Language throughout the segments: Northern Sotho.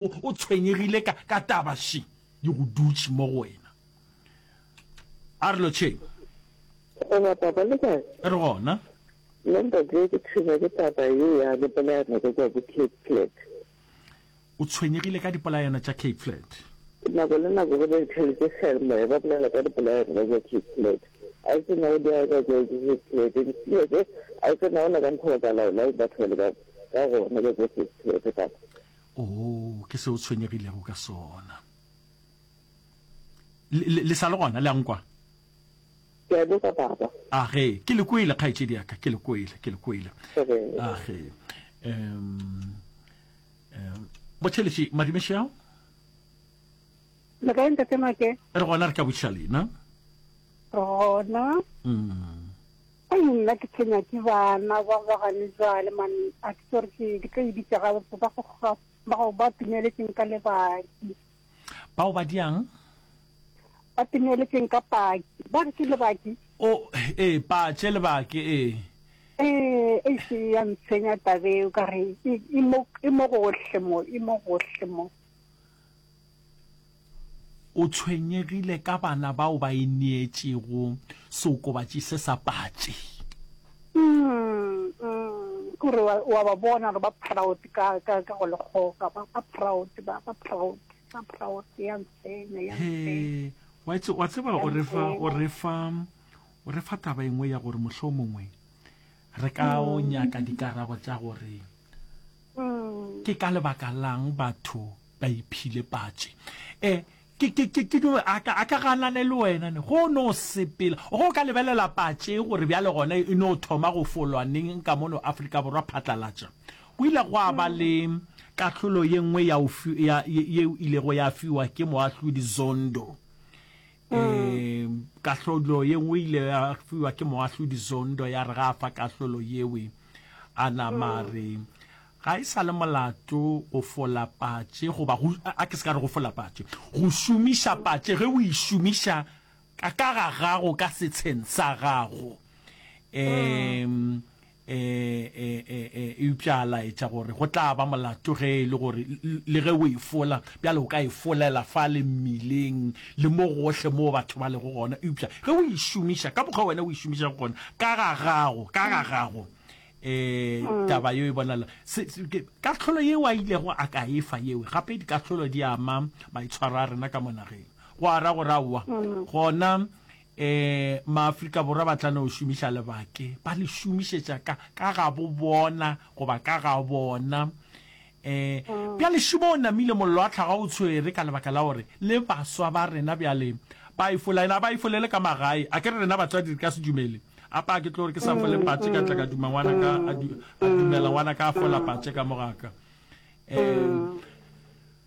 O, o tshwenyegile ka, ka taba še, di go dutše mo go wena. A re lotšheng. Goba taba le kae? E re gona. Nna ntate ke tshwenywa ke taba ye ya dipolayano tša tša bo-Cape Flats. O tshwenyegile ka dipolayano tša Cape Flat? Nako le nako ge ba ithaletse seyalemoya ba bolela ka dipolayano tša tša Cape Flat. A o tsena go diaga tša tša Cape Flat? Diphilo tše, a o tsena go na ka mokgwa ba ka laolang batho bale ka, ka gona ka tša Cape Flat, kapa? Oo, ke se o tshwenyegilego ka sona. Le, le, le sa le gona, le a nkwa? Ke a boka, Papa. A ge, ke le kwele, kgaetšedi ya ka, ke le kwele, ke le kwele. A ge, um, um, botheletše madimešeao? Le kae ntate Make? Re gona re tla botšiša lena. Re gona. Mm. Ai nna ke tshwenya ke bana ba ba gane jwale man a ke tsore ke ke tlo ibitsa ga ba ba go ga ba go ba tumeletseng ka lebaki. Bao ba diang? Ba tumeletseng ka paki. Ba re ke lebaki. O eh patše lebaki eh. Eh e se ya ntshwenya tabeo ka re e e mo e mo gohle mo e mo gohle mo. O tshwenyegile ka bana bao ba ineetšego seokobatši se sa patše. O re wa ba bona gore ba proud ka go lekgoka, ba proud, ba proud, ba proud, ya ntsenya, ya ntsenya. Wa tseba o re fa taba engwe ya gore mohlomongwe Re ka o mm. nyaka dikarabo tša gore mm. ke ka lebaka lang batho ba iphile patše e a ka ganane le wena ne go no sepela go ka lebelela patše gore bjale gone e no thoma go folwaneng ka mono aforika borwa phatlalatša go ile go a ba mm. le kahlolo ye nngwe yeo ilego ya fiwa ke moahlodi zondo um kahlolo ye nngwe ile ya fiwa ke moahlodi zondo ya re ga a fa kahlolo yewe a nama mm. re ga e sa le molato go fola patše goba a ke se ka re go fola patše go šomiša patše ge o e šomiša ka ka ga gago ka setsheng sa gago um E, e, e, e, eupša a laetša gore go tla ba molato ge e le gore le ge o e fola bjale o ka e folela fa le mmileng le mo gohle moo batho ba lego gona eupša ge o e šomiša ka mokgwa wena o e šomiša go gona ka ga gago ka ga gago eh mm. taba yo e bonala kahlolo yeo a ilego a ka efa yeo gape dikahlolo di ama maitshwaro a rena ka monageng go ara gore aowa mm. gona E, Maafrika Borwa ba tla no šomiša lebake, ba le šomišetša ka, ka ga bo bona, goba ka ga bona. E, bjale šimo o namile, mollo wa tlhaga o tshwere, ka lebaka la gore le baswa ba rena bjale ba ifola, ena ba ifolele ka magae. A ke re rena batswadi re ka se dumele, apa ke tlo gore ke sa fole patše ka tla ka duma ngwana ka, a, du, a dumela ngwana ka a fola patše ka mo ga ka. E,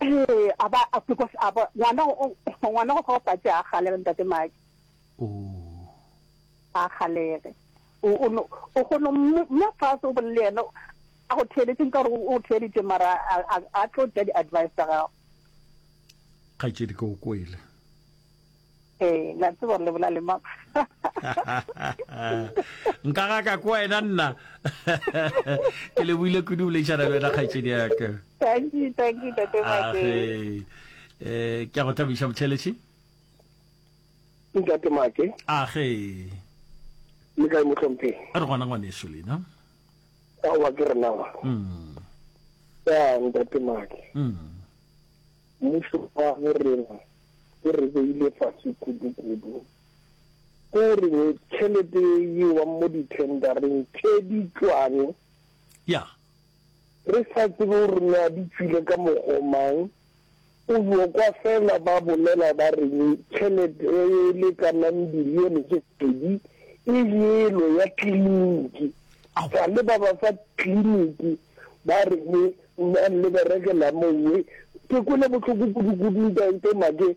Ee, a ba, because a ba, ngwana o, ngwana go fa patše a galege ntate Maki. Oh. A galege. O, o, no, o gono, mme fase o bolele yena, a go theeletše nka gore o theeletše mara a, a, a tlo tša di-advice tsa gago. Kgaetšedi ke go kwele. Eh, la tseba le bola le mang nka ga ka kwa ena nna ke le buile kudu le tšhana le wena kgaitsedi ya ka thank you thank you tate ah, make eh ke go thabisha motšheletši ntate make a ah, ge le ka motlhomphe a re gona ngwane so lena a wa ke rena wa mm ya ntate make mm Mmušo wa bo rena o re beile fase kudukudu. Ke go reng tšhelete ye e yewang mo dithendareng tše ditšwane? Ya. Re sa tsebe gore na di tšwile ka mokgwa o mang, o yo kwa fela ba bolela ba reng tšhelete e e lekanang bilione tše pedi e yelo ya kliniki. Sa le ba ba fa kliniki Ba re ke mang le berekela mongwe? Ke kwele bohloko kudu-kudu, Ntate Make.